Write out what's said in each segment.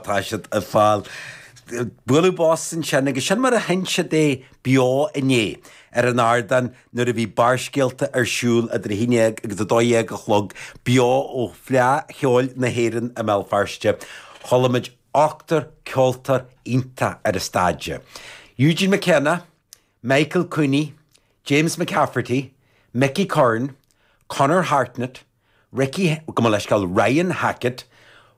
Tá siad ar fáil. Bualadh bos ansin agus sin mar a sheinn siad é beo inné ar an ardán nuair a bhí Barrscéalta ar siúl idir 11 agus 12 a chlog, beo ó Fleadh Cheoil na hÉireann i mBéal Feirste. Chuala muid ochtar ceoltóir iontach ar an stáitse, Eugene McKenna, Michael Coney, James McCafferty, Micky Curran, Conor Hartnett, Ricky, gabh mo leithscéal, Ryan Hackett,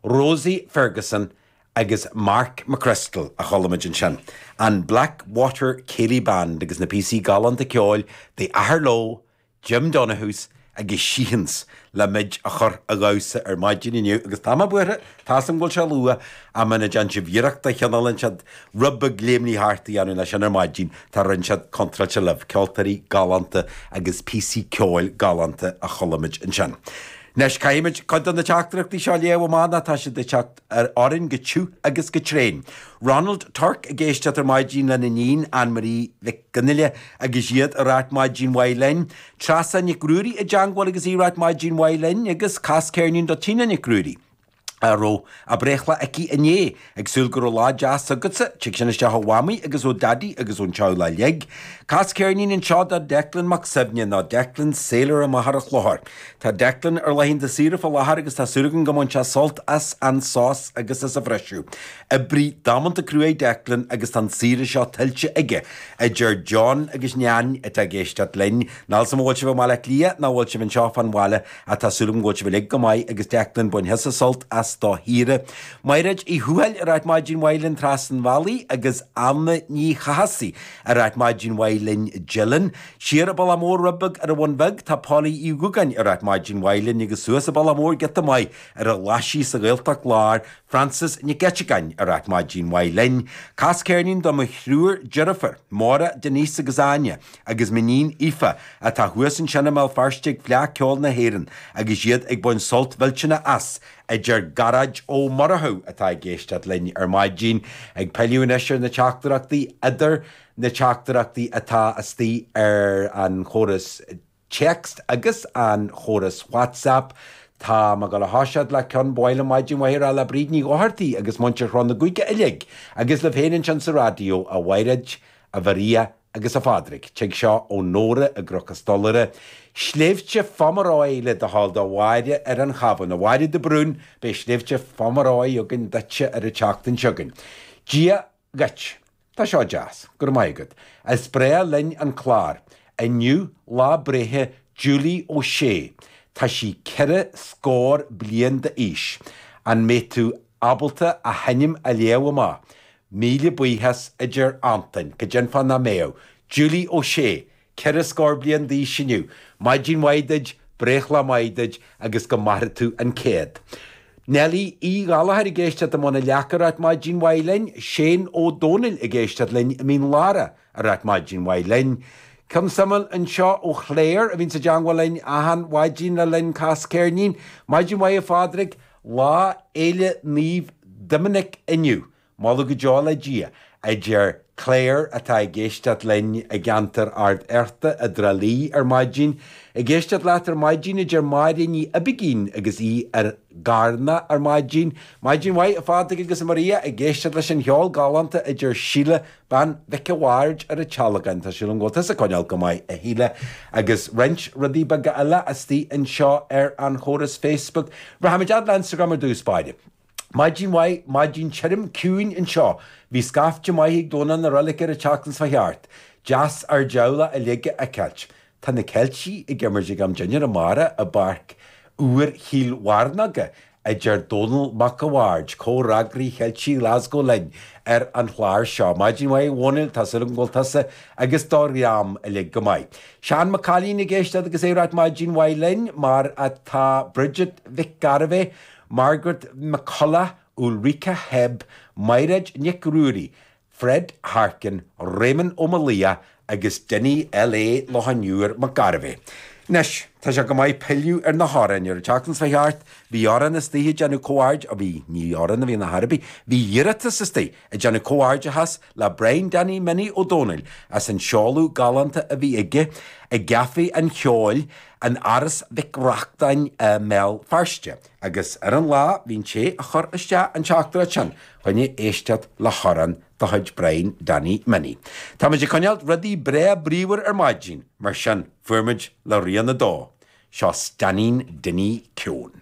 Rosie Ferguson agus Mark McCrystal a chualamid ansin, an Blackwater Céilí Band agus na píosaí galánta ceoil The Athair Leo, Jim Donohues agus Sheehan's le muid a chur a dhamhsa ar maidin inniu agus tá mé buartha Tá a fhios agam go bhfuil sé luath, ach muna dtearn sibh iarracht de chineál inteacht, rud beag léimnigh thart a dhéanamh leis sin ar maidin, tá rud inteacht contráilte libh, ceoltóirí galánta agus píosaí ceoil galánta a chuala muid ansin. Anois, caithfimid cuid de na teachtaireachtaí seo a léamh amach nó tá siad ag teacht orainn go tiugh agus go tréan. Ronald Turke ag éisteacht ar maidin lena iníon, Ann Marie Mhic Fhionnghaile, agus iad ag ráit maidin mhaith linn, Treasa Nic Ruairí i dteangmháil agus í ag ráit maidin mhaith linn, agus cas ceirnín do Tina Nic Ruairí. a raibh a breithlá aici inné. Ag súil go raibh lá deas agatsa. Tig sin isteach ó Mhamaí agus ó Daidí agus ón teaghlach uilig. Cas ceirnín anseo do Declan Mac Suibhne, nó Declan Sailor amach ar an Chlochar. Tá Declan ar laethanta saoire fá láthair agus tá súil agam go mbainfidh sé sult as an sos agus as an bhriseadh. Oibrí damanta cruaidh é Declan agus tá an saoire seo tuillte aige. A deir John agus Neain, atá ag éisteacht linn. Níl a fhios agam an bhfuil sibh i mBaile Átha Cliath nó an bhfuil sibh anseo fán bhaile ach tá súil agam go bhfuil sibh uilig go maith agus Declan bain thusa sult as do shaoire. Mairéad Uí Thuathail ag ráit maidin mhaith linn trasna an bhealaigh agus Anna Ní Chathasaigh ag ráit maidin mhaith linn Dylan siar an bealach mór rud beag ar an Bhun Bheag Tá Polly Uí Dhúgáin ag ráit maidin mhaith linn agus suas an bealach mór giota maith ar an Ghlasaigh sa Ghaeltacht Láir Frances Nic Eiteagáin ag ráit maidin mhaith linn Cas ceirnín do mo thriúr deirfiúr Maura Denise agus Áine agus m'iníon Aoife, atá thuas ansin i mBéal Feirste ag Fleadh Ceoil na hÉireann agus iad ag baint sult mhillteanach as, a deir Gearóid Ó Murchadha atá ag éisteacht linn ar maidin ag pilleadh anois ar na teachtaireachtaí idir na teachtaireachtaí atá istigh ar an chóras Text agus an chóras Whatsapp. Tá mé ag gabháil a thoiseacht le cionn, ba mhaith liom maidin mhaith a rá le Bríd Ní Dhochartaigh agus muintir Chró na gCuigeadh uilig agus libh féin ansin sa raidió, a Mhaighread, a Mharia, a. Agus a Phádraig, tig seo ó Nóra i gCnoc a' Stolaire, Sléibhte Phomeroy le do thoil do Mháire ar an Chabhán. A Mháire de Brún, beidh Sléibhte Phomeroy againn duitse ar an tseachtain seo chugainn. Dia dhuit. Tá seo deas. Go raibh maith agat. Is breá linn an clár. Inniu lá breithe Julie Ó Sé. Tá sí ceithre scór bliain d'aois. An mbeidh tú ábalta a hainm a léamh amach? Míle buíochas, a deir Antain, go deimhin dá mbeadh, Julie Ó Sé, ceithre scór bliain d'aois inniu, maidin mhaith duit, breithlá maith duit agus go mairfidh tú an céad. Nellie Uí Ghallachair ag éisteacht i mBun an Leaca ag ráit maidin mhaith linn, Seán Ó Dónaill ag éisteacht linn i Mín Lárach ag ráit maidin mhaith linn. Ceann suimiúil anseo ó Chlaire a bhíonns i dteangmháil linn achan mhaidin le linn Cas Ceirnín. Maidin mhaith a Phádraig. Lá Fhéile Naomh Doiminic inniu, moladh go deo le Dia, a deir Claire, atá ag éisteacht linn i gceantar Ard Fhearta i dTrá Lí ar maidin. Ag éisteacht leat ar maidin, a deir Máire Ní Oibicín agus í i gCarna ar maidin. Maidin mhaith, a Phádraig agus a Maria, ag éisteacht leis an cheol galánta, a deir Síle Bean Mhic a' Bhaird ar an tSealgán. Tá súil agam go bhfuil tusa ag coinneáil go maith, a Shíle, agus roinnt rudaí beaga eile astoigh anseo ar an chóras Facebook. Rachaimid fhad le Instagram ar dtús báire. Maidin mhaith, maidin tirim, ciúin anseo. Bhí scaifte maith ag Domhnach na Reilige ar an tseachtain seo a chuaigh thart. Deas ár dteaghlach uilig a fheiceáilt. Tá na Ceiltigh ag imirt ag am dinnéir amárach i bPáirc úr Chill Mhearnóg, a deir Dónall Mac a' Bhaird, comhfhreagraí Cheiltigh Glasgow linn ar an chlár seo. Maidin mhaith, a Dhónaill, tá súil agam go bhfuil tusa agus do dhream uilig go maith. Seán Mac Cailín ag éisteacht agus ag ráit maidin mhaith linn, mar atá Bridget Mhic Gairbheith, Margaret McCullagh, Ulrika Hebb, Maighréad Nic Ruairí, Fred Harkin, Réamonn Ó Maolaodha agus Dinny LA Loch an Iúir Mac Gairbheith. Anois, tá sé chomh maith pilleadh ar na hamhráin ar an tseachtain seo a chuaigh thart, bhí amhrán astoigh ag déanamh comh-aird, ó bhí, ní amhrán a bhí ann ar bith, bhí iarratas astoigh ag déanamh comhghairdeachas le Brian Danny Minnie Ó Dónaill as an seoladh galánta a bhí aige i gCaifé an Cheoil in Áras Mhic Reachtáin i mBéal Feirste. Agus ar an lá, bhí an té a chuir isteach an teachtaireacht sin chun é éisteacht le hamhrán de chuid Brian Danny Minnie. Tá muid ag coinneáil rudaí breá bríomhar ar maidin, mar sin chuaigh muid le Rian 2. Seo Stainnín Dinny Keown.